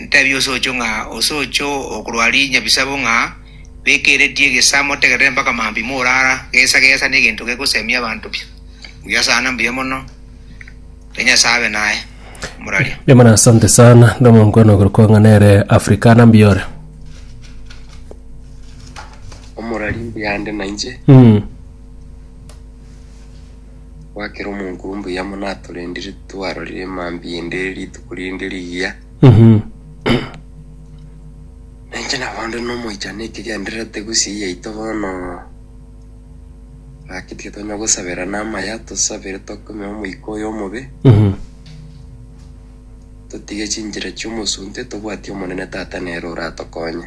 Ntebie osocho ng'a osocho okorwa aria nyabisabo ng'a bekeretie egesaa motegerere mpaka maambia morara, gesa gesa negento gegosemia abanto pi. Mbuya sana mbuya mono. Ere Nyasae abe naye. Moraria. Mbuya mono asante sana nde omonkwana ogoro kwang'a nere africana mbuya ore Omorari mbuya ande nainche. mm. Gwakera omonkuru mbuya mono atorendire twarorire emambia ende rituko rinde rigiya. Na inche nabo nde nomoichano ekegendererete gusii yaito bono. Gaki tiga tonya gosaberana amaya, tosabere tokome omoika oyo omobe, totige chinchera chi'omosunte, tobwatie Omonene Tata nere oratokonye.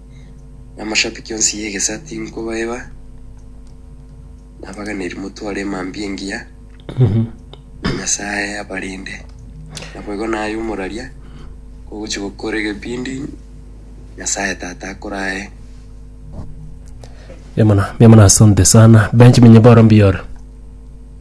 Namashabiki onsi y'egesa tinkobaeba, nabaganeri motware emambia engiya na Nyasaye abarinde. Naboigo naye omoraria ogochi gokora egebindi Nyasaye Tata akorae. Mbiamono, mbiamono asante sana. Benjamin Nyeboro mbiore.